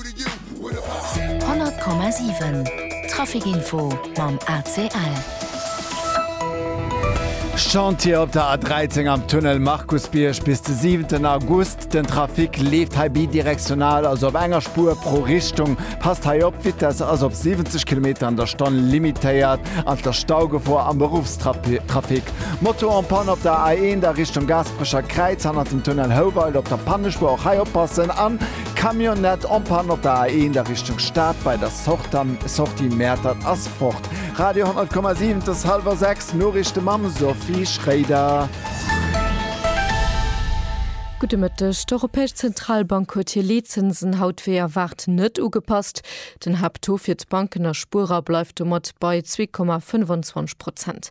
100,7 Traficinfo mam ACL. Chantier op der A13 am Tunnel Markusbierg bis de 7 August. Den Trafic leeft hei bidirektional, also op enger Spuer pro Richtung. Passt hei op, d'Vitesse ass op 70 Kilometer an der Stonn limitéiert an et ass Staugefor am Beruffstrafic. Moto en panne op der A1 a Richtung Gaasperecher Kräiz hannert dem Tunnel Houwald op der Pannespuer, och hei oppassen. Camionnette en panne op der A1 a Richtung Stad bei der Sortie Mäertert ass fort. Radio 10,7 't ass hallwer 6, Noriichte mam Sophie Schréider. Gudde Mëtteg, D'Europäesch Zentralbank huet hir Leetzinsen haut wéi erwaart net ugepasst. Den Haapttaux fir d'Banken a Spuerer bleift domat bei 2,25 Prozent.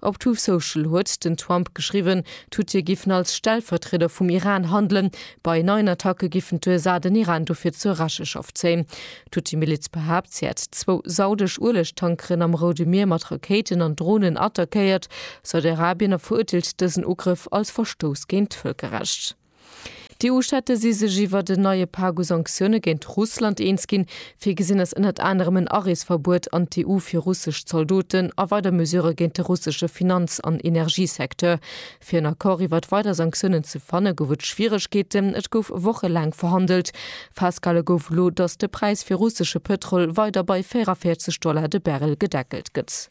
Op Truth Social huet den Trump geschriwwen, d'Huthië giffen als Stellvertrieder vum Iran handelen. Bei neien Attacke giffen d'USA den Iran dofir zur Recheschaft zéien. D'Huthië-Miliz behaapt, si hätt zwou saudesch Uelegtankeren am Roude Mier mat Rakéiten an Dronen attackéiert. Saudi-Arabien a verurteelt dësen Ugrëff als Verstouss géint d'Vëlkerrecht. D'EU-Staate si sech iwwert en neie Pak u Sanktioune géint Russland eens ginn. Virgesinn ass ënnert anerem en Areesverbuet an d'EU fir russesch Zaldoten a weider Mesurë géint de russesche Finanz an Energiesecteur. Fir en Accord iwwert weider Sanktiounen ze fanne gouf et Schwieregkeeten. Et gouf wochelaang verhandelt. Festgehale gouf elo, datt de Präis fir russesche Pëtrol weider bei 44 Dollar de Barrel gedeckelt gëtt.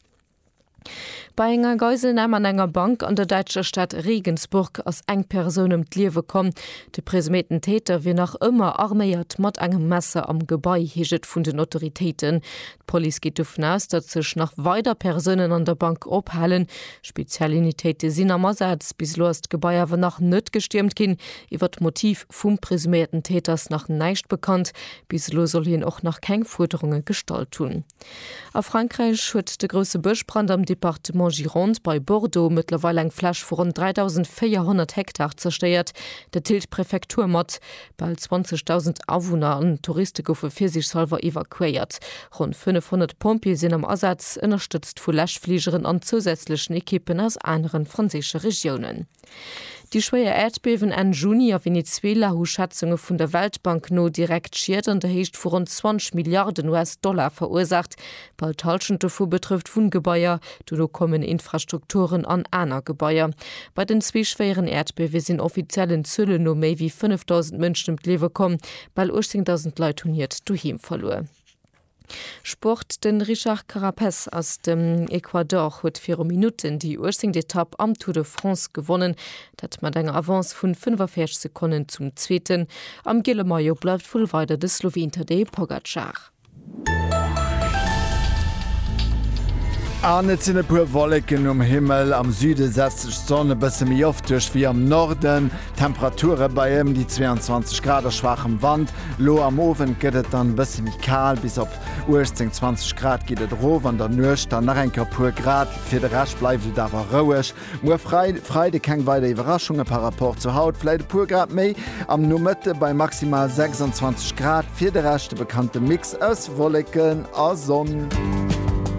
Bei enger Geiselnam an enger Bank an der däitscher Stad Regensburg ass eng Persoun ëm d'Liewe komm. De presuméierten Täter wier nach ëmmer arméiert mat engem Messer am Gebai, heescht et vun den Autoritéiten. D'Police geet dovun aus, datt sech nach weider Persounen an der Bank ophalen. Speziell Unitéite sinn am Asaz. Bis elo ass d'Gebai awer nach net gestiermt ginn. Iwwer d'Motiv vum presuméierten Täter ass nach näischt bekannt. Bis elo soll hien och nach keng Fuerderunge gestallt hunn. A Frankräich huet de grousse Bëschbrand am Departement Gironde bei Bordeaux mëttlerweil eng Fläch vu ronn 3.400 Hektar zerstéiert. Dat deelt d'Prefektur mat. Bal 20.000 Awunner an Touriste goufe virsiichshalwer evakuéiert. Ronn 500 Pompjeeë sinn am Asaz, ënnerstëtzt vu Läschfligeren an zousätzlechen Ekippen aus anere franséische Regiounen. Déi schwéier Äerdbiewen Enn Juni a Venezuela hu Schätzunge vun der Weltbank no direkt Schied an der Héicht vu ronn 20 Milliarden US-Dollar verursaacht. Bal d'Hallschent dovu betrëfft Wunngebaier, dono kommen Infrastrukturen an aner Gebaier. Bei den zwee schwéieren Äerdbiewe sinn offiziellen Zuelen no méi wéi 5.000 Mënschen ëm d'Liewe komm. Bal 18.000 Leit hunn hiert Doheem verluer. Sport, De Richard Carapes aus dem Ecuador huet viru Minutten déi uechzéngt Etapp am Tour de France gewonnen, dat mat enger Avance vun 45 Sekonnen zum Zweeten. Am giele Maillot bleift wuel weider de Sloween Tadej Pogacar. An et sinn e puer Wolleken um Himmel, am Süde setzt sech d'Sonn e bësse méi oft duerch wéi am Norden. D'Temperature bei ëm déi 22 Grad a schwaachem Wand. Elo am Owend gëtt et dann e bësse méi kal, bis op 18, 20 Grad geet et erof, an der Nuecht dann nach eng Kéier e puer Grad. Fir de Rescht bleift et awer roueg. Muer Freide keng weider Iwwerraschunge par Rapport zu haut, vläit e puer Grad méi am Nomëtte bei maximal 26 Grad. Fir de Rescht de bekannte Mix aus Wolleken a Sonn.